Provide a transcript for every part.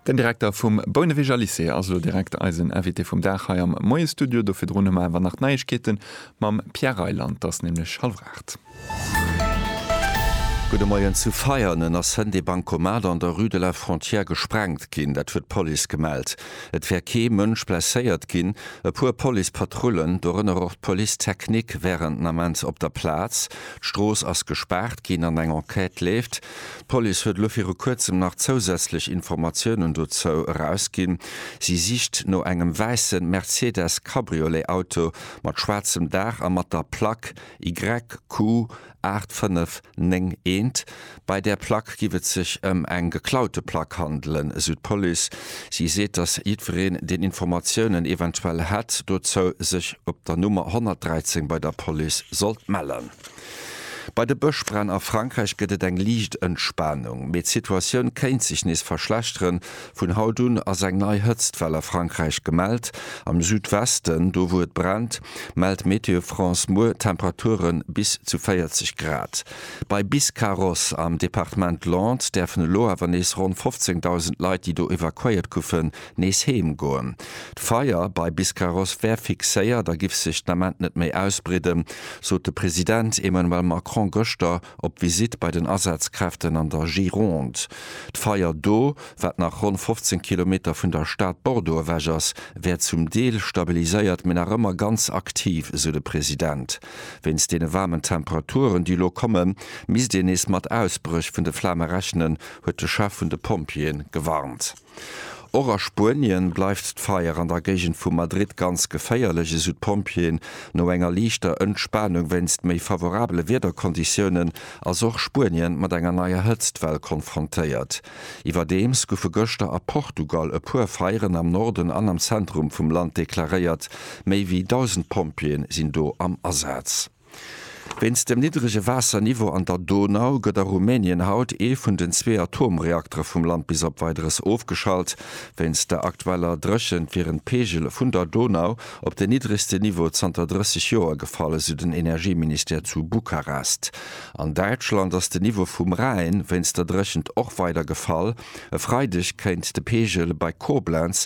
Den Direkter vum Bouneweger Lycée ass elo direkt eisen Invité vum Dag hei am Moie-Studio. Do virdrun hu mer awer nach d'Neiegkeete mam Pierre Reyland. Et ass nämlech hallef aacht. Gudde Moien. Zu Veianen ass hënt ee Bancomat an der Rue de la Frontière gesprengt ginn. Dat huet d'Police gemellt. Et wär kee Mënsch blesséiert ginn. E puer Policepatrullen, dorënner och d'Police technique, wären den Ament op der Plaz. D'Strooss ass gespaart ginn an eng Enquête leeft. D'Police huet elo viru kuerzem nach zousätzlech Informatiounen dozou erausginn. Si sicht no engem wäisse Mercedes Cabriolet Auto mat schwaarzem Daach a mat der Plack YQ 8591. Bei där Plack giff et sech ëm eng geklaute Plack handelen, esou d'Police. Si seet, datt jiddwereen, deen Informatiounen eventuell hätt dozou, sech op der Nummer 113 bei der Police sollt mellen. Bei de Bëschbränn a Frankräich gëtt et eng liicht Entspanung, mee d'Situatioun kéint sech nees verschlechteren. Vun haut un ass eng nei Hëtztwell a Frankräich gemellt. Am Südwesten, do wou et brennt, mellt Météo France muer Temperature bis zu 40 Grad. Bei Biscarrosse am Departement Landes däerfen elo awer nees ronn 15.000 Leit, déi do evakuéiert goufen, Nees heem goen. D'Feier bei Biscarrosse wär fixéiert a giff sech den Ament net méi ausbridden, sot de President Emmanuel Macron gëschter op Visitt bei den Asazkräften an der Gironde. D'Feier do, wat nach ronn 15 Kilometer vun der Stad Bordeaux ewech ass, wär zum Deel stabiliséiert, mee nach ëmmer ganz aktiv, esou de President. Wéinst deene waarmen Temperaturen, déi elo kommen, misst een nees mat Ausbréch vun de Flame rechnen, huet de Chef vun de Pompjeeë gewarnt. Och a Spuenien bleift d'Feier an der Géigend vu Madrid ganz geféierlech, esou d'Pompjeeën. No enger liichter Entspanung wéinst méi favorabele Wiederkonditiounen ass och Spuenien mat enger neier Hëtztwell konfrontéiert. Iwwerdeems goufe gëschter a Portugal e puer Feieren am Norden an am Zentrum vum Land deklaréiert. Méi wéi 1.000 Pompjeeë sinn do am Asaz. Wéinst dem niddrege Waasserniveau an der Donau gëtt a Rumänien haut ee vun den zwee Atomreaktere vum Land bis op Weideres ofgeschalt. Wéinst der aktueller Dréchent wieren d'Peegele vun der Donau op den niddregste Niveau zanter 30 Joer gefall, esou den Energieministère zu Bukarest. An Däitschland ass de Niveau vum Rhäin wéinst der Dréchent och weider gefall. E Freideg kéint de Peegel bei Koblenz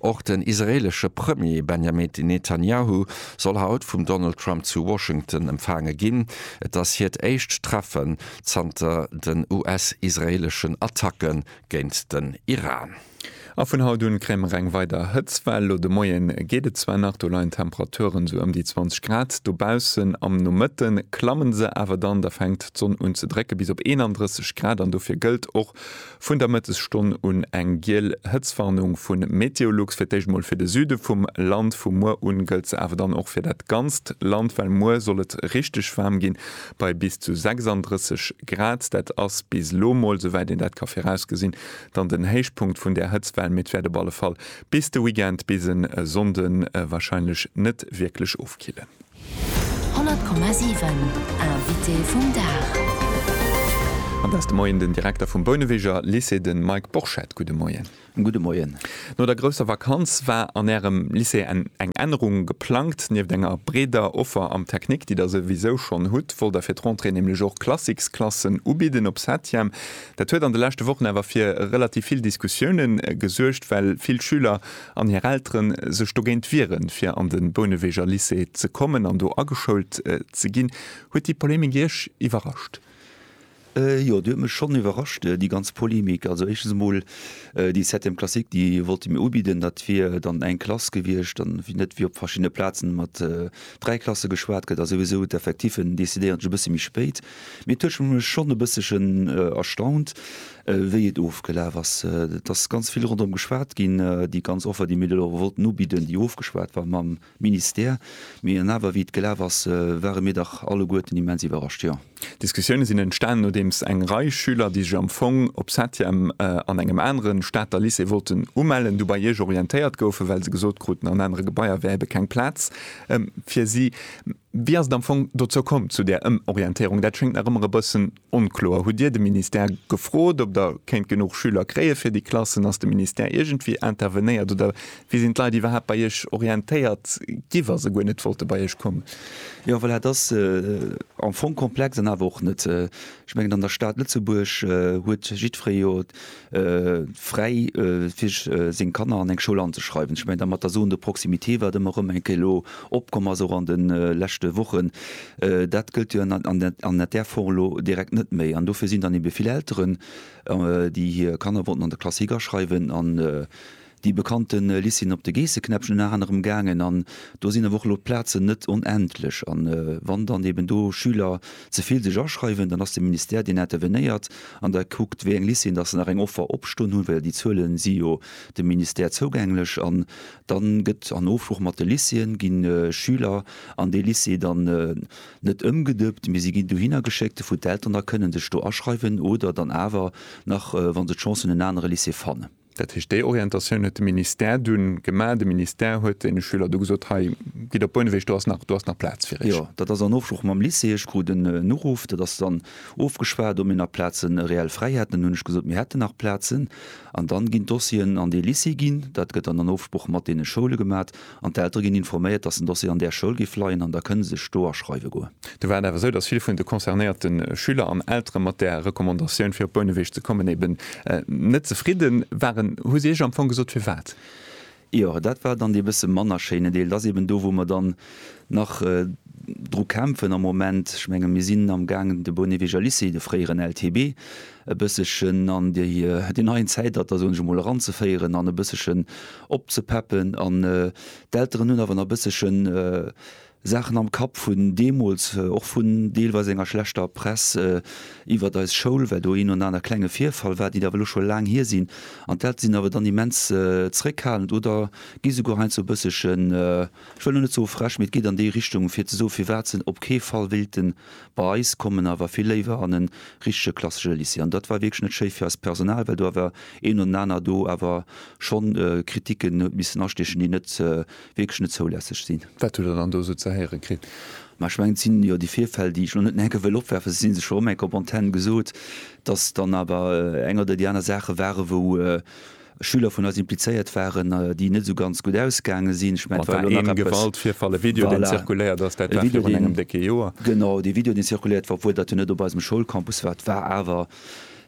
Och den israeelesche Premier Benjamin Netanjahu soll haut vum Donald Trump zu Washington empfaange ginn. Et ass hiert éischt Treffe zanter den US-israeeleschen Attacke géint den Iran. A vun haut un kréie mer eng weider Hëtztwell. Lo de Moie geet et zwar nach, do leien d'Temperature sou ëm déi 20 Grad dobaussen. Am Nomëtte klamme se awer dann, da fänkt d'Sonn un ze drécke bis op 31 Grad an dofir gëllt och, Vun der Mëttesstonn un eng giel Hëtzwarnung vu Meteolux, fir d'éischt mol fir de Süde vum Land. Vu muer un gëllt se awer dann och fir dat ganzt Land, well muer soll et richteg waarm ginn, bei bis zu 36 Grad. Dat ass bis elo mol, souwäit een dat ka virausgesinn, dann den Héichpunkt vun där Hëtztwell, mee et wäert op alle Fall bis de Weekend, bis e Sonnde warscheinlech net wierklech ofkillen. 100,7 Invité vum Dag. An da ass de Moien den Direkter vum Bouneweger Lycée, de Mike Borchert. Gudde Moien. Gudde Moien. No der grousser Vakanz war an Ärem Lycée eng Ännerung geplangt. Nieft enger breeder Offer am Technique, déi Der souwisou schonn hutt, wollt Der fir d'Rentrée nämlech och Classiques-Klassen ubidden op Septième. Dat huet an de leschte Wochen awer fir relativ vill Diskussioune gesuergt, well vill Schüler an hir Elteren sech dogéint wieren, fir an de Bouneweger Lycée ze kommen an do ageschoult ze ginn. Huet déi Polemik Iech iwwerrascht? Jo, déi huet mech schonn iwwerrascht, déi ganz Polemik. Also éischtens emol, déi Septième classique, déi wollte mir ubidden, dat wier dann eng Klass gewiescht, an net wéi op verschiddene Plazen mat dräi Klasse geschwat gëtt, ass souwisou d'Effectifen decidéieren sech e bësse méi spéit. Mee et huet mech schonn e bëssechen erstaunt, wéi et ofgelaf ass. Et ass ganz vill ronderëm geschwat ginn, déi ganz Offer, déi mir do elo wollten ubidden, déi ofgeschwat war mam Ministère. Mee an awer, wéi et gelaf ass, ware mir dach alleguerten immens iwwerrascht, jo. D'Diskussioune sinn entstanen, nodeems eng Rei Schüler, déi sech am Fong op Septième an engem anere Stater Lycée wollten umellen, du bei Iech orientéiert goufen, well se gesot kruten, an anere Gebaier wär ebe keng Plaz fir si. Wéi ass et am Fong dozou komm, zu där Ëmorientéierung? Dat schéngt nach ëmmer e bëssen onkloer. Hutt Dir de Ministère gefrot, ob Der kéint genuch Schüler kréie fir déi Klassen? Ass de Ministère iergendwéi intervenéiert oder wéi sinn d'Leit iwwerhaapt bei Iech orientéiert gi wa se guer net wollte bei Iech kommen? Jo, voilà, et ass am Fong komplex an awer och net. Ech mengen, an der Stad Lëtzebuerg huet jiddweree jo fräi fir seng Kanner an eng Schoul anzeschreiwen. Ech mengen da mat der Zone de proximité, wat ëmmer erëm eng Kéier elo opkomm ass, och an de leschte Wochen, dat gëllt jo an där Form elo direkt net méi. An dofir sinn dann ebe vill Elteren, déi hir Kanner wollten an der Klass higaschreiwen an Déi bekannte Liz sinn op de Geesseknäppchen ënner anerem gaangen an do sinn awer och elo d'Plazen net onendlech. A wann dann eben do Schüler ze vill sech aschreiwen, dann ass de Ministère deen intervenéiert an da kuckt wéi eng Lycéeën datt se nach eng Offer opstoen hunn, well déi Zuele si jo dem Ministère zougänglech an dann gëtt an Ofsprooch mat de Lycéeën gi Schüler an dee Lycée dann net ëmgedëppt, mee si ginn dohinner geschéckt, wou d'Eltern da kënnen sech do aschreiwen oder dann awer nach, wa se d'Chance hunn, en anere Lycée fannen. Dat heescht, déi Orientatioun huet de Ministère du gemaach. De Ministère huet deene Schüler du gesot, Hei, gitt op Bouneweg, do ass nach, do ass nach Plaz fir iech. Jo, dat ass an Ofsprooch mam Lycée. Ech krut en Uruff, dat ass dann ofgeschwat, ob mir nach Plazen reell fräi hätten. Dann hunn ech gesot, mir hätten nach Plazen. An dann ginn d'Dossieren an dee Lycée ginn. Dat gëtt dann an Ofsprooch mat deene Schoule gemat. an d'Eltere ginn informéiert, dass den Dossier an där Schoul géif leien an da kënne se sech do aschreiwe goen. Do war et awer esou, dass vill vun de concernéierte Schüler an Eltere mat där Recommandatioun, fir op Bouneweg ze kommen, eben net zefridde waren. Hu si Iech am Fong gesot, firwat? Jo, dat war dann dee bësse manner schéinen Deel. Dat ass eben do, wou mer dann nach dru kämpfen am Moment. Ech menge mir sinn amgaangen, de Bouneweger Lycée, de fréieren LTB, e bëssechen an déi déi neien Zäitalter, soen ech emol, eranzeféieren an e bëssechen opzepeppen an d'Elteren hunn awer nach e bëssechen Saachen am Kapp vun deemools, och vun deelweis enger schlechter Press iwwert eis Schoul, well do een oder aner klenge Virfall war, déi awer elo scho laang hier sinn an d'Eltere sinn awer dann immens zréckhalend oder gi souguer heiansdo e bëssechen, ech wëll elo net soe frech, mee et geet an déi Richtung, fir ze soen, firwat se op kee Fall wéilten Bei eis koum en awer vill léiwer an e richtege klassesche Lycée. An dat war wierklech net schéi fir eist Personal, well do awer een no den aner do awer schonn Kriticken huet missen astiechen, déi net, wierklech net zoulässeg sinn. Wat hutt Der dann do esou ze héiere kritt? Ma ech mengen, et sinn jo déi Virfäll, déi ech elo net nach eng Kéier wëll opwerfen, se si sech erëm eng Kéier op Antenn gesot, dass dann awer eng oder déi aner Saache ware wou, Schüler vun eis implizéiert waren, déi net esou ganz gutt ausgaange sinn. Ech mengen, et war elo nach eppes. An engem Gewaltvirfall, e Video, deen zirkuléiert ass, dat war virun engem décke Joer. Genau, dee Video, deen zirkuléiert war, obwuel dat jo net op eisem Schoulcampus war, et war awer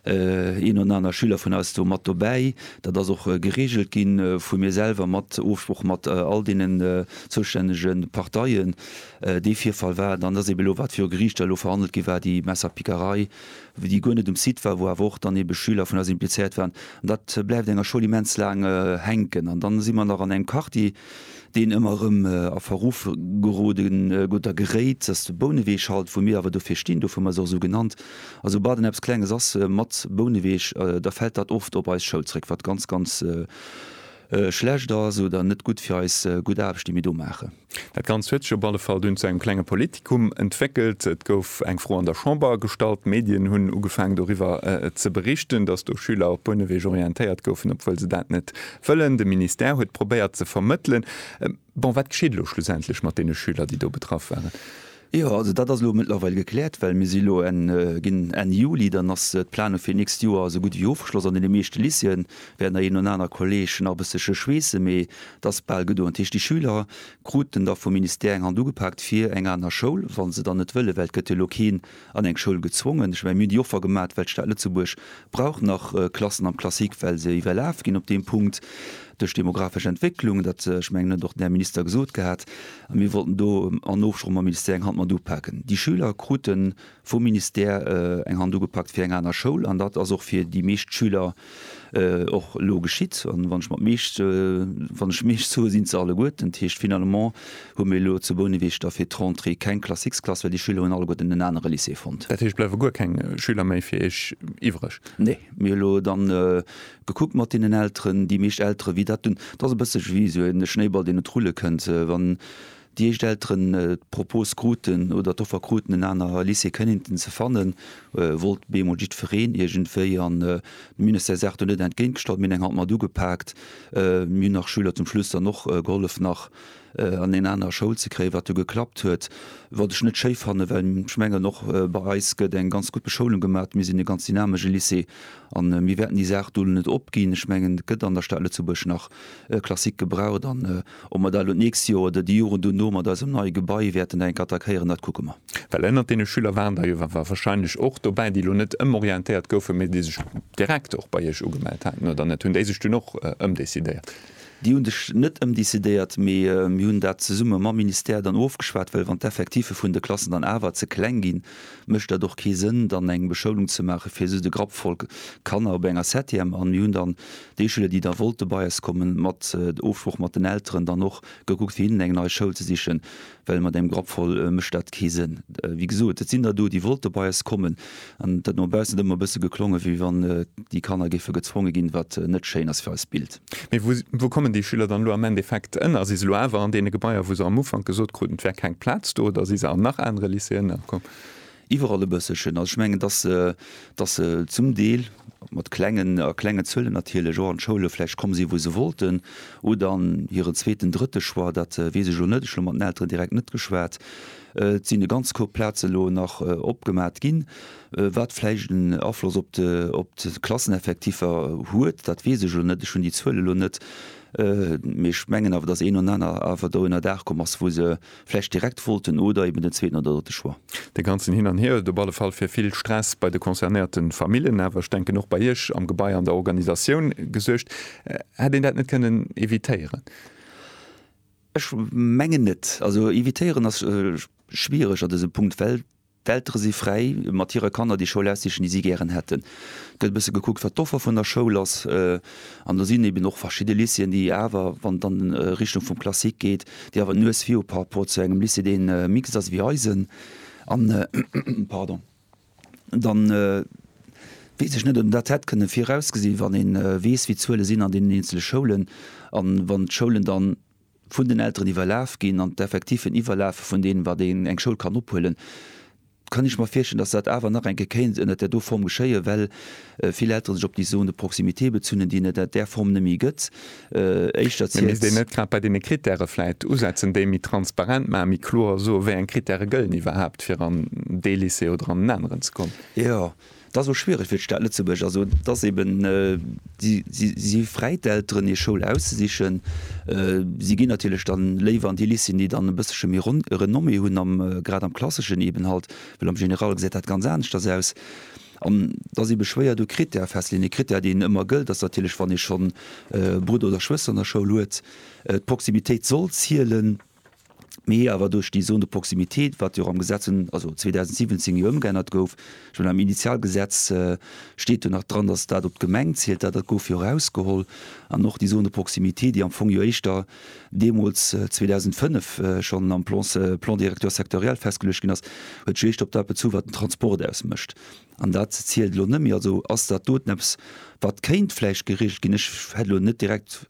een oder aner Schüler vun eis do mat dobäi. Dat ass och gereegelt gi vu mir selwer mat Ofsprooch mat all deenen zoustännege Parteien. Dee Virfall war et an ass eeben elo, wat viru Geriichter elo verhandelt gi war, déi Messerpickerei déi guer net um Site war, wou awer och dann ebe Schüler vun eis implizéiert waren. An dat bleift enger Schoul immens laang hänken. An dann si mer nach an engem Quartier, deen ëmmer erëm a Verruff gerode gutt a geréit. Dat ass de Bouneweeg halt, wou mir awer dofir stinn, dofir hu mer se och esou genannt. A soubal dann eppes Klenges ass mat Bouneweeg, da fält dat oft op eis Schoul zréck, wat ganz, ganz schlecht ass oder net gutt fir eis gutt Aarbecht, déi mir do maachen. Dat Ganzt huet sech op alle Fall dunn zu engem klenge Politikum entwéckelt. Et gouf eng Fro an der Chamber gestallt, d'Medien hunn ugefaangen doriwwer ze berichten, datt do Schüler op Bouneweg orientéiert goufen, obwuel se dat net wëllen. De Ministère huet probéiert ze vermëttelen. Bon, wat geschitt elo schlussendlech mat deene Schüler, déi do betraff waren? Jo, also dat ass elo mëttlerweil gekläert, well mir si elo ginn Enn Juli, dann ass d'Planung fir d'nächst Joer esou gutt ewéi ofgeschloss an deene meeschte Lycéeën wäert der een oder aner Kolleg nach e bësselche schweessen, mee et ass bal gedoen. Dat heescht, déi Schüler kruten da vum Ministère eng Hand ugepaakt fir eng aner Schoul, wa se dann net wëllen, well et gëtt jo elo keen an eng Schoul gezwongen. Ech mengen, mir hunn déi Offer gemaat, well d'Stad Lëtzebuerg brauch nach Klassen am Classique, well se iwwerlaf ginn op deem Punkt duerch demographesch Entwécklung. Dat, ech mengen, huet och den Här Minister gesot gehat. A mir wollten do an Ofsproch mam Ministère eng Hand mat upaken. Déi Schüler krute vum Ministère eng Hand ugepakt fir eng aner Schoul. An dat ass och fir déi meescht Schüler och elo geschitt. An wann ech mat meescht, wann ech meescht soe sinn et se alleguerten. Dat heescht finalement, hu mir elo zu Bouneweg da fir d'Rentrée keng Classiques-Klass, well déi Schüler hunn alleguerten en anere Lycée fonnt. Dat heescht, bleiwe guer keng Schüler méi fir Iech iwwreg? Nee. Mir hu elo da gekuckt mat deenen Elteren, déi meescht Eltere wéi dat hunn, et ass e bësse wéi esou e Schnéiball, deen et rulle kënnt, wann déi éischt Elteren d'Propos kruten oder d'Offer kruten, en anere Lycée kennenten ze fannen, wollt bemol jiddwereen iergendwéi. An de Ministère sagt do net entgéintgestallt, mir hunn eng Hand mat ugepaakt, mir hunn nach Schüler zum Schluss dann och gehollef nach an eng aner Schoul ze kréien, wat jo geklappt huet, wat ech net schéi fannen, well ech mengen, och bei eis gëtt eng ganz gutt Beschoulung gemaach. Mir sinn e ganz dynamesche Lycée a mir wäerten déi Saach do net opginn. Ech mengen, et gëtt an der Stad Lëtzebuerg nach Klassik gebraucht an ob mer dat elo d'nächst Joer oder déi Joren duerno mat eisem neie Gebai wäerten dat enk attackéieren, dat kucke mer. Well ënnert deene Schüler waren der jo wahrscheinlech och dobäi, déi elo net ëmorientéiert goufen, mee déi sech direkt och bei Iech ugemellt haten, oder net? Hunn déi sech dunn och ëmdecidéiert? Déi hunn sech net ëmdecidéiert, mee mir hunn dat zesumme mam Ministère dann ofgeschwat, well wann d'Effectiffe vun de Klassen dann awer ze kleng ginn, mécht dat och kee Sënn, dann eng Beschoulung ze maache fir esou de Grapp voll Kanner op enger Septième. An mir hunn dann déi Schüler, déi da wollte bei eis kommen, mat Ofsprooch mat den Elteren dann och gekuckt, fir hinnen eng nei Schoul ze sichen. Well mat engem Grapp voll mécht dat kee Sënn. Wéi gesot, et sinn der do, déi wollte bei eis kommen, an et huet no baussen ëmmer e bësse geklongen, wéi wann déi Kanner géife gezwonge ginn, wat net schéin ass fir eist Bild. Mee wou kommen déi Schüler dann elo am Endeffekt ënner? Si se elo awer an deene Gebaier, wou se am Ufank gesot kruten, et wär keng Plaz do, oder si se an nach anere Lycéeën ënnerkomm? Iwwerall e bësselchen. Also ech mengen, dass se, dass se zum Deel mat klengen, a klenge Zuelen natierlech, och an d'Schoule vläicht komm sinn, wou se wollten, oder an hiren zweeten, drëtte Choix, dat weess ech elo net, ech hu elo mat den Elteren direkt net geschwat. Et sinn e ganz Koup Plaze elo nach opgemat ginn. Wat vläicht en Afloss op de, op d'Klasseneffektiffer huet, dat weess ech elo net, ech hunn déi Zuel elo net. Mee ech mengen awer, dass een oder aner awer do ënnerdaach komm ass, wou se Vläicht direkt wollten oder eben den zweeten oder drëtte Choix. Dee ganzen Hin an Hier huet op alle Fall fir vill Stress bei de concernéierte Famillen, awer ech denken och bei Iech am Gebai an der Organisatioun gesuergt. Hätt een dat net kënnen evitéieren? Ech mengen net. Also evitéieren ass schwiereg a dësem Punkt, well. D'Eltere si fräi, mat hire Kanner déi Schoul aussichen, déi si gären hätten. Et gëtt e bësse gekuckt, wat d'Offer vun der Schoul ass. An do sinn eben och verschidde Lycéeën, déi awer, wann et an Richtung vum Classique geet, déi awer d'Nues vir hu par rapport zu engem Lycée, dee mixte ass ewéi eisen. An da weess ech net, ob een dat hätt kënne virausgesinn, wann ee weess, wéi d'Zuele sinn an deenen eenzele Schoulen. A wann d'Schoulen dann vun den Elteren iwwerlaf ginn an d'Effectifen iwwerlafe vun deenen, wat een eng Schoul kann ophuelen, kann ech mer virstellen, dass dat awer nach eng Kéier kéint ënnert där do Form geschéien, well vill Eltere sech op déi Zone de proximité bezunn hunn, déi et ënnert där Form nëmme méi gëtt. Éischter zielt. Mee misst een net grad bei deene Krittäre vläicht usetzen, déi méi transparent maachen, méi kloer soen, wéi eng Krittäre gëllen iwwerhaapt, fir an dee Lycée oder an en aneren ze kommen? Jo, Dat ass och schwiereg fir d'Stad Lëtzebuerg. Also et ass eben, si, si, si fräit d'Elteren, hir Schoul auszesichen. Si ginn natierlech dann léiwer an déi Lycéeën, déi dann e bëssche méi Ren, Renommée hunn am, grad am Klasseschen eben halt, well am General gesäit dat ganz aneschters aus. An et ass ebe schwéier do Critèrë festleeën. Ee Critère, deen ëmmer gëllt, ass natierlech, wann ee schonn Brudder oder Schwëster an der Schoul huet, d'Proximitéit soll zielen. mee awer duerch déi Zone de proximité, wat jo och am Gesetz vun, also 2017 jo ëmgeännert gouf. Ech mengen am Initialgesetz steet jo nach dran, datt dat op d'Gemeng zielt, dat dat gouf jo erausgeholl. An och déi Zone de proximité, déi am Fong jo éischter deemools 2005 schonn am Plan, Plan directeur sectoriel festgeluecht ginn ass, huet sech jo éischter op dat bezu wat den Transport ausmécht. An dat zielt elo net méi. Also ass dat doten eppes, wat kéint vläicht geregelt ginn. Ech hätt elo net direkt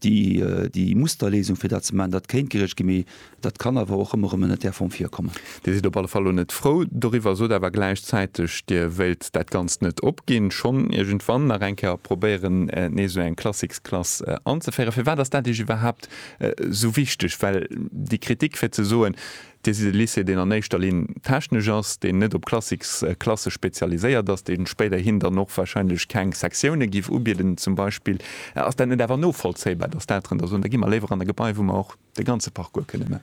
déi, déi Musterléisung, fir dat ze maachen. Dat kéint geregelt ginn, mee dat kann awer och ëmmer erëm ënnert där Form virkommen. Dir sidd op alle Fall elo net frou doriwwer, sot awer gläichzäiteg, Dir wéilt dat Ganzt net opginn, schonn iergendwann nach eng Kéier probéieren, nees esou eng Classics-Klass anzeféieren. Firwat ass dat Iech iwwerhaapt esou wichteg? Well déi Kritik, fir ze soen, Dir sidd e Lycée, deen an éischter Linn technesch ass, deen net op Klassik, Klasse spezialiséiert ass, dee spéiderhin dann och warscheinlech keng Sektiounen giff ubieden zum Beispill. Ass dat net awer novollzéibar, dass d'Elteren da soen, da gi mer léiwer an e Gebai, wou mer och de ganze Parcours kënne man?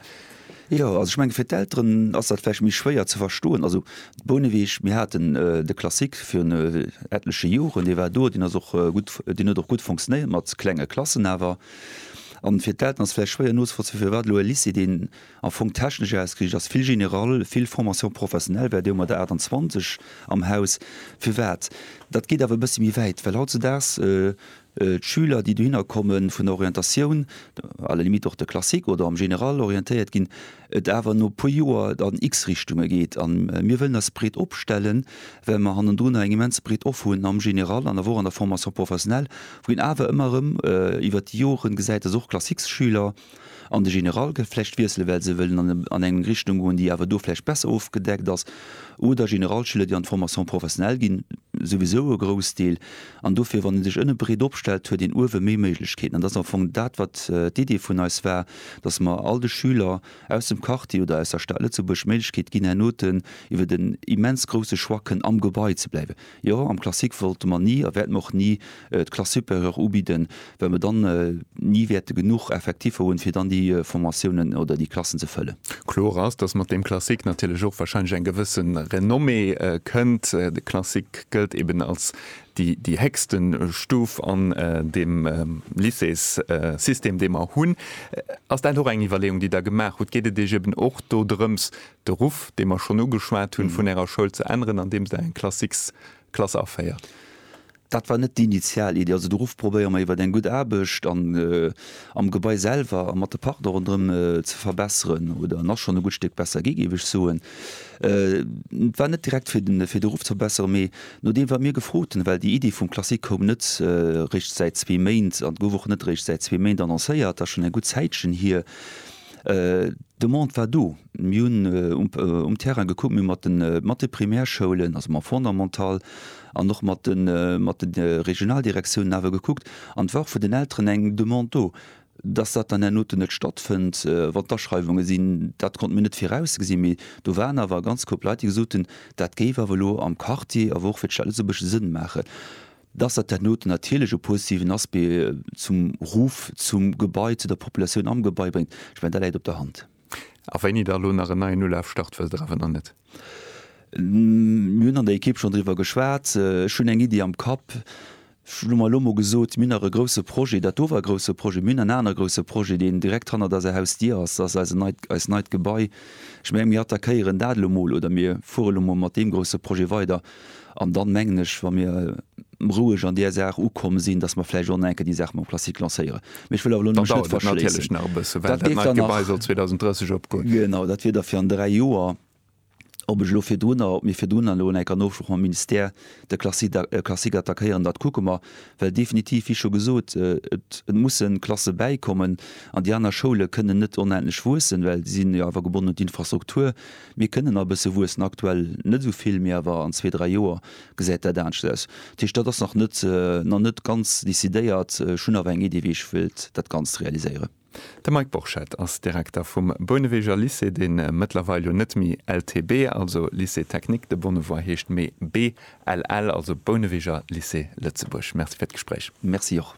Jo, also ech menge fir d'Elteren ass dat vläicht méi schwéier ze verstoen. Also Bouneweg, mir haten de Klassik virun etleche Joren, dee war do, deen ass och gutt, deen huet och gutt fonctionéiert mat klenge Klassen awer. An fir d'Elteren ass vläicht schwéier nozevollzéien, firwat elo e Lycée, deen am Fong technesch ausgeriicht ass, vill general, vill Formation professionnelle war do mat der 28 am Haus. Firwat? Dat geet awer e bëssi méi wäit, well hautzedaags d'Schüler, déi dohinner komme vun der Orientatioun, à la limite och de Classique oder am General orientéiert ginn, et awer no e puer Joer an x Richtunge geet. A mir wëllen eis breet opstellen, well mer hannendrun eng immens breet Offer hunn am General an awer och an der Formation professionnelle, wou een awer ëmmer erëm iwwert déi Jore gesäit, dass och Classiques-Schüler, an de General gëtt vläicht wiessele well se wëllen an eng Richtung goen déi awer do vläicht besser ofgedeckt ass, oder Generalschüler déi an d'Formation professionnelle ginn, souwisou e Groussdeel, an dofir wann ee sech ënne breet opstellt huet een uewe méi Méiglechkeeten an dat ass am Fong dat wat d'Idee vun eis war, datt mer all de Schüler aus dem Quartier oder aus der Stad Lëtzebuerg d'Méiglechkeet ginn herno iwwer den immens grousse Choix kënnen am Gebai ze bleiwen. Jo, am Classique wollte mer ni a wäerte mer och ni d'Classesupérieur ubidden, well mer dann ni wäerte genuch Effectiffer hunn, fir dann déi Formatiounen oder déi Klassen ze fëllen. Kloer ass, dass mat deem Classique natierlech och wahrscheinlech eng gewësse Renommée kënnt. De Classique gëllt eben als déi héchste Stuf an deem Lycéessystem, dee mer hunn. Ass dat och eng Iwwerleeung, déi Der gemaach hutt? Geet et Iech eben och dodrëms, de Ruff, dee mer schonn ugeschwat hunn, vun Ärer Schoul ze änneren, andeems Der eng Klassiksklass aféiert? Dat war net déi initial Iddi. Also de Ruff probéiere mer iwwer eng gutt Aarbecht an am Gebai selwer a mat de Partner ronderëm ze verbesseren, oder en ass schonn e gutt Stéck besser gi, géif ech soen. Et war net direkt fir den, fir de Ruff ze verbesseren, mee nodeem wat mir gefrot hunn, well déi Iddi vum Classique koum net réischt säit zwee Méint an gouf och net réischt säit zwee Méint annoncéiert, dat ass schonn eng gutt Zäitchen hier, D'Demande war do. Mir hunn um Terrain gekuckt, mir hu mat de mat de Primärschoulen, also mam Fondamental an och mat de mat de Regionaldirektiounen awer gekuckt. An et war och vun den Elteren eng Demande do, dass dat dann herno net stattfënnt, wann d'Aschreiwunge sinn. Dat konnte mir net virausgesinn, mee do waren awer e ganz Koup Leit, déi gesot hunn, dat géif awer elo am Quartier, awer och fir d'Stad Lëtzebuerg Sënn maachen. Dass dat herno natierlech e positiven Aspect zum Ruff, zum Gebai, zu der Populatioun am Gebai bréngt, ech mengen, dat läit op der Hand. A wéini Der elo nach en neien Ulaaf start wësst Der awer nach net? Mir hunn an der Ekipp schonn driwwer geschwat. Ech hunn eng Iddi am Kapp. Ech hunn elo emol gesot, mir hunn nach e grousse Projet, dat do war e grousse Projet, mir hunn en anere grousse Projet, deen direkt hannert eiser Hausdier ass, dat ass eisen neit, eist neit Gebai. Ech menge mir attackéieren dat elo emol oder mir fuere elo emol mat deem grousse Projet weider. An dann mengen ech, wa mir roueg an där Saach ukomm sinn, dass mer vläicht och nach enke déi Saach mam Classique lancéieren. Mee ech wëll awer elo nach net verschléissen. Dat dauert natierlech nach e bëssen, well dat neit Gebai soll 2030 opgoen. Genau, dat wier da fir an dräi Joer. Ob ech elo virdrunner, ob mir virdrunner elo nach enk an Ofsprooch mam Ministère de Classique attackéieren, dat kucke mer. Well definitiv, wéi scho gesot, et musse Klasse bäikommen an déi aner Schoule kënnen net onendlech wuessen, well déi sinn jo awer gebonnen un d'Infrastruktur. Mir kënnen a bësse wuessen, aktuell net esou vill, mee awer an zwee, dräi Joer gesäit dat anescht aus. Dat heescht, dat ass nach net, nach net ganz decidéiert. Ech hunn awer eng Iddi, wéi ech wëilt dat Ganzt realiséieren. De Mike Borchert ass Direkter vum Bouneweger Lycée, dee mëttlerweil jo net méi LTB, also Lycée Technique de Bonnevoie heescht, mee BLL, also Bouneweger Lycée Lëtzebuerg. Merci fir d'Gespréich. Merci och.